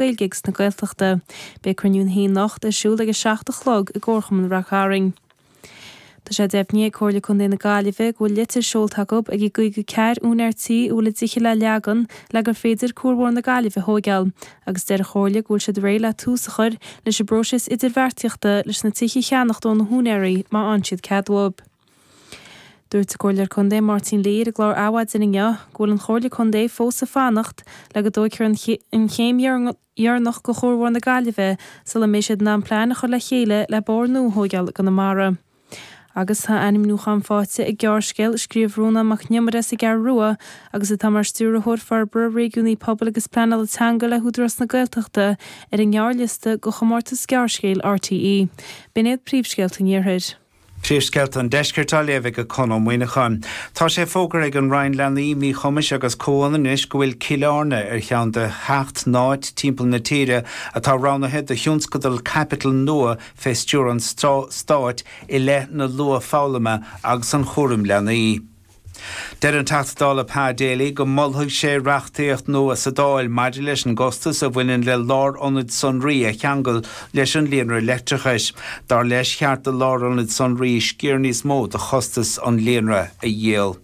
Gaeilge agus na Gaeltachta. Beidh cruinniú ar an haon ábhar anocht ar siúl ag a seacht a chlog i gComharchumann Rath Cairn. Tá sé deimhnithe ag Comhairle Contae na Gaillimhe go bhfuil litir seolta acu ag an gcaoga ceathrar úinéir tí a bhfuil a dtithe le leagan le gur féidir Cuarbhóthar na Gaillimhe a thóigeáil agus deir an Chomhairle go bhfuil siad réidh le tús a chur leis an bpróiseas idirbheartaíochta leis na tithe a cheannacht óna húinéaraí má fhaigheann siad cead uathu. Dúirt an Comhairleoir Contae Máirtín Lee ar an gclár Adhmhaidin inniu go bhfuil an Chomhairle Contae fós ag fanacht le go dtóigfear an chéim dheireanach de chuarbhóthar na Gaillimhe sula mbeidh siad in ann plean a chur le chéile le bóthar nua a thóigeáil i gConamara. Agus tá ainmniúchán faighte ag gearrscéal a scríobh Rónán Mac nIomaire sa gCeathrú Rua agus atá mar Stiúrthóir Forbartha Réigiúnaí, Pobail agus Pleanála Teanga le hÚdarás na Gaeltachta ar an ngearrliosta go chomórtas gearrscéal RTÉ. B'in iad Príomhscéalta an Iarthair. Príomhscéalta an Deiscirt á léamh ag Conn Ó Muíneacháin. Tá sé fógartha ag an Roinn Leanaí, Míchumais agus Comhionannais go bhfuil Cill Airne ar cheann de sheacht n-áit timpeall na tíre atá roghnaithe do thionscadal caipitil nua fé stiúir an Stáit i leith na luath-fhoghlama agus an chúraim leanaí. Deir an Teachta Dála Pa Daly go molfaidh sé reachtaíocht nua sa Dáil maidir leis an gcostas a bhaineann le lárionaid sonraí a cheangal leis an líonra leictreachais. Dar leis, ba cheart do lárionaid sonraí sciar níos mó de chostas an líonra a dhíol.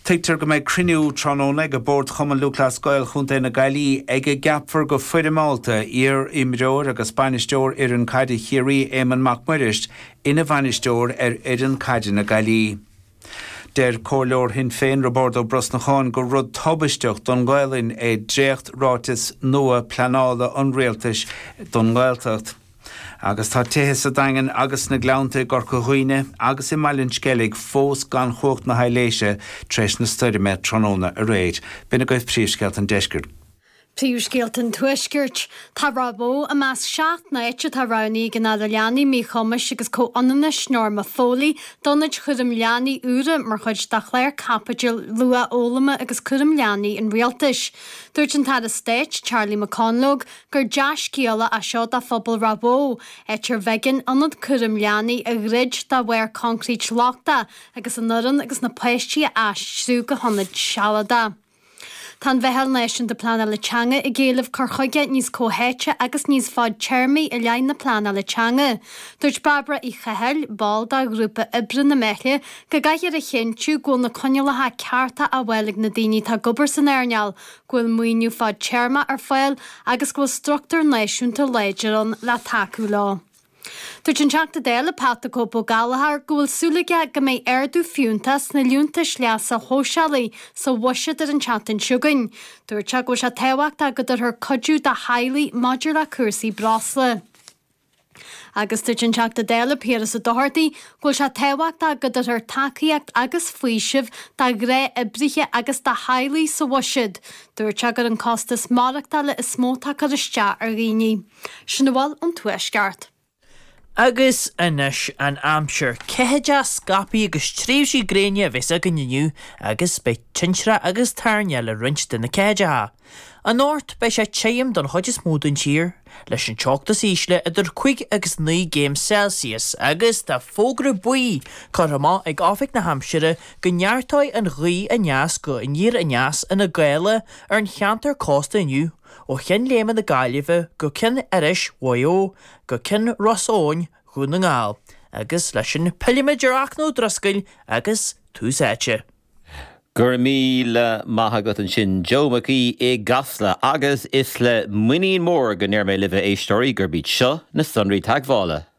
Tuigtear go mbeidh cruinniú tráthnóna ag Bord Chumann Lúthchleas Gael Chontae na Gaillí ag a gceapfar go foirmeálta iar-imreoir agus bainisteoir fhoireann caide Chiarraí, Éamonn Mac Muiris, ina bhainisteoir ar fhoireann caide na Gaillí. Deir comhairleoir Shinn Féin Roibeárd Ó Brosnacháin gur rud tubaisteach don nGaolainn é dréacht ráiteas nua pleanála an Rialtais don nGaeltacht. Agus tá tithe sa Daingean agus sna Gleannta i gCorca Dhuibhne agus i mBaile an Sceilg fós gan chumhacht na haidhléise tar éis na stoirme tráthnóna aréir. B'in agaibh príomhscéalta an deiscirt. Príomhscéalta an Tuaiscirt. Tá Ráth Bó i measc seacht n-áit atá roghnaithe ag an Aire Leanaí, Míchumais agus Comhionannais, Norma Foley, d'ionaid chúraim leanaí úra mar chuid de chlár caipitil luathfhoghlama agus cúraim leanaí an Rialtais. Dúirt an tAire Stáit, Charlie McConalogue, gur dea-scéala é seo do phobal Ráth Bhó, áit arbh éigean ionad cúraim leanaí a dhruid de bharr concrete lochtach agus an fhoireann agus na páistí a aistriú go hionaid sealadacha. Tá an Mheitheal Náisiúnta Pleanála Teanga ag éileamh cur chuige níos comhtháite agus níos fadtéarmaí i leith na pleanála teanga. Dúirt Bairbre Uí Chathail, ball de ghrúpa oibre na Meithle, go gcaithfear a chinntiú go bhfuil na coinníollacha cearta á bhfáil ag na daoine atá ag obair san earnáil, go bhfuil maoiniú fadtéarma ar fáil agus go bhfuil struchtúr náisiúnta láidir ann le tacú leo. Dúirt an Teachta Dála Pat 'The Cope' Gallagher go bhfuil súil aige go mbeidh ardú fiúntach sna liúntais leasa shóisialaigh sa bhuiséad ar an tseachtain seo chugainn. Dúirt sé go bhfuil sé tábhachtach go dtabharfar cuidiú do theaghlaigh maidir le cúrsaí breosla. Agus dúirt an Teachta Dála Piaras Ó Dochartaigh go bhfuil sé tábhachtach go dtabharfar tacaíocht agus faoiseamh do ghnáthoibrithe agus do theaghlaigh sa bhuiséad. Dúirt sé gur an costas maireachtála is mó atá ag cur isteach ar dhaoine. Sin a bhfuil ón Tuaisceart. Agus anois an aimsir. Ceathaideacha scaipthe agus tréimhsí gréine a bheas againn inniu agus beidh tintreach agus toirneach le roinnt de na ceathaideacha. Anocht beidh sé tirim don chuid is mó den tír, leis an teocht is ísle idir cúig agus naoi gcéim Celsius agus tá fógra buí curtha amach ag Oifig na hAimsire go neartóidh an ghaoth aneas go aniar aneas ina gála ar an cheantar cósta inniu. ó Cheann Léime na Gaillimhe go Ceann Iorrais Mhaigh Eo go Ceann Ros Eoghain Dhún na nGall, agus leis sin pillimid ar Fhachtna Ó Drisceoil agus Tús Áite. Go raibh míle maith agat ansin Joe Mac Aodha i gCasla, agus is le muinín mór go ndeir mé libh, a éisteoirí, gurb iad seo na sonraí teagmhála.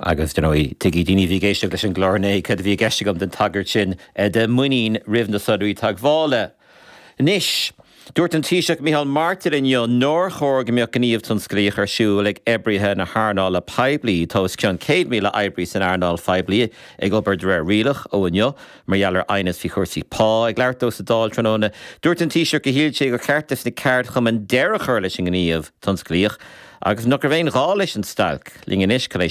Agus, ar ndóigh, tuigfidh daoine a bhí ag éisteacht leis an gclár inné céard a bhí i gceist agam den tagairt sin do mhuinín roimh na sonraí teagmhála. Anois, dúirt an Taoiseach Micheál Martin inniu nár chóir go mbeadh gníomh tionsclaíoch ar siúl ag oibrithe na hearnála poiblí, tá os cionn 100,000 oibrí san earnáil phoiblí ag obair de réir rialach ó inniu, mar gheall ar aighneas faoi chúrsaí pá. Ag labhairt dó sa Dáil tráthnóna, dúirt an Taoiseach gur shíl sé gur cheart do na ceardchumainn deireadh a chur leis an ngníomh tionsclaíoch agus nach raibh aon ghá leis an stailc. Linn anois, cad é